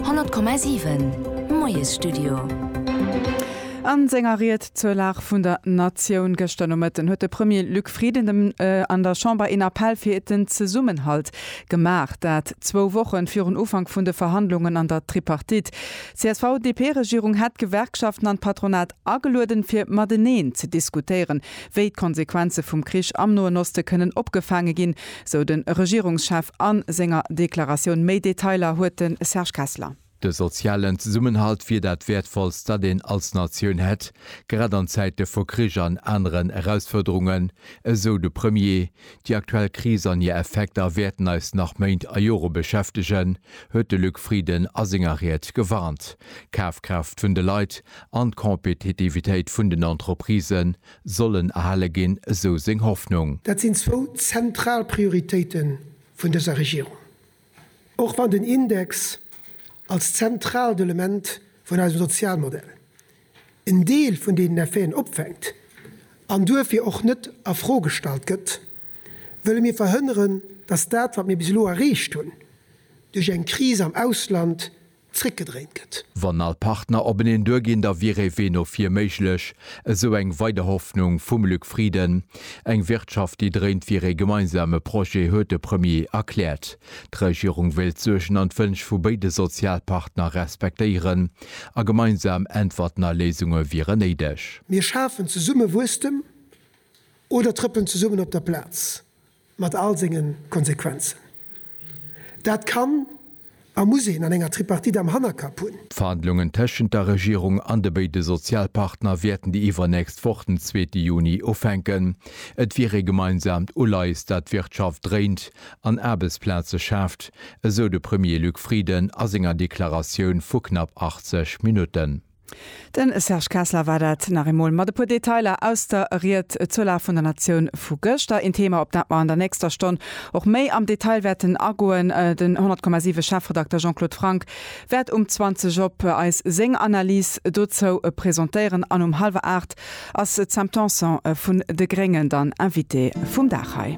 100,7 Moiesstudio. A senger Ried zur Lag vun der Natioun gëschter Nomëtten huet de Premier Luc Frieden dem an der Chamber een Appell fir den Zesummenhalt gemaach. Dat zwou Woche virun Ufank vun de Verhandlungen an der Tripartite. D'CSV-DP-Regierung hätt d'Gewerkschaften an d'Patronat Agelueden fir mateneen ze diskutéieren, wéi d'Konsequenze vum Krich am Noen Oste kënnen opgefaange ginn, sou de Regierungschef a senger Deklaratioun. Méi Detailer huet de Serge Kessler. De sozialen Zesummenhalt wier dat Wäertvollst, dat een als Natioun hätt, grad an Zäite vu Krich an aneren Erausfuerderungen, esou de Premier. Déi aktuell Kris an hir Effekter wäerten eis nach Méint a Jore beschäftegen, huet de Luc Frieden a senger Ried gewarnt. D'Kafkraaft vun de Leit an d'Compétitivitéit vun den Entreprisë sollen erhale ginn, esou seng Hoffnung. Dat sinn zwou zentral Prioritéite vun dëser Regierung. Och wann den Index als zentraalt Element vun eisem Sozialmodell en Deel vun deenen Effeten opfänkt an duerfir och net a Fro gestallt gëtt, wëlle mir verhënneren, datt dat, wat mir bis elo erreecht hunn, duerch eng Kris am Ausland zréckgedréint gëtt. Wann all Partner openeen duerginn, da wier ee Wee no vir méiglech, esou eng weider Hoffnung vum Luc Frieden. Eng Wirtschaft, déi dréint, wier ee gemeinsame Projet, huet de Premier erkläert. D'Regierung wéilt d'Suergen an d'Wënsch vu béide Sozialpartner respektéieren a gemeinsam Äntwerten a Léisunge wieren néideg. Mir schafen zesumme Wuesstem oder trëppelen zesummen op der Plaz, Mat all senge Konsequenzen. Dat kann a muss een an enger Tripartite am Hannerkapp hunn. D'Verhandlungen tëschent der Regierung an de béide Sozialpartner wäerten déi iwwernächst Woch, den zweete Juni, ufänken. Et wier ee gemeinsaamt Uleies, dat d'Wirtschaft dréint an Aarbechtsplaze schaaft, esou de Premier Luc Frieden a senger Deklaratioun vu knapp 80 Minutten. Den Serge Kessler war dat nach eemol mat e puer Detailer aus der Ried zur Lag vun der Natioun vu gëschter. Een Thema, op dat mer an der nächster Stonn och méi am Detail wäerten agoen. Den 100,7 Chefredakter Jean-Claude Franck wäert um 20 op eis seng Analys dozou presentéieren an um hallwer 8 ass d'Sam Tanson vun de Gréngen dann Invitée vum Dag hei.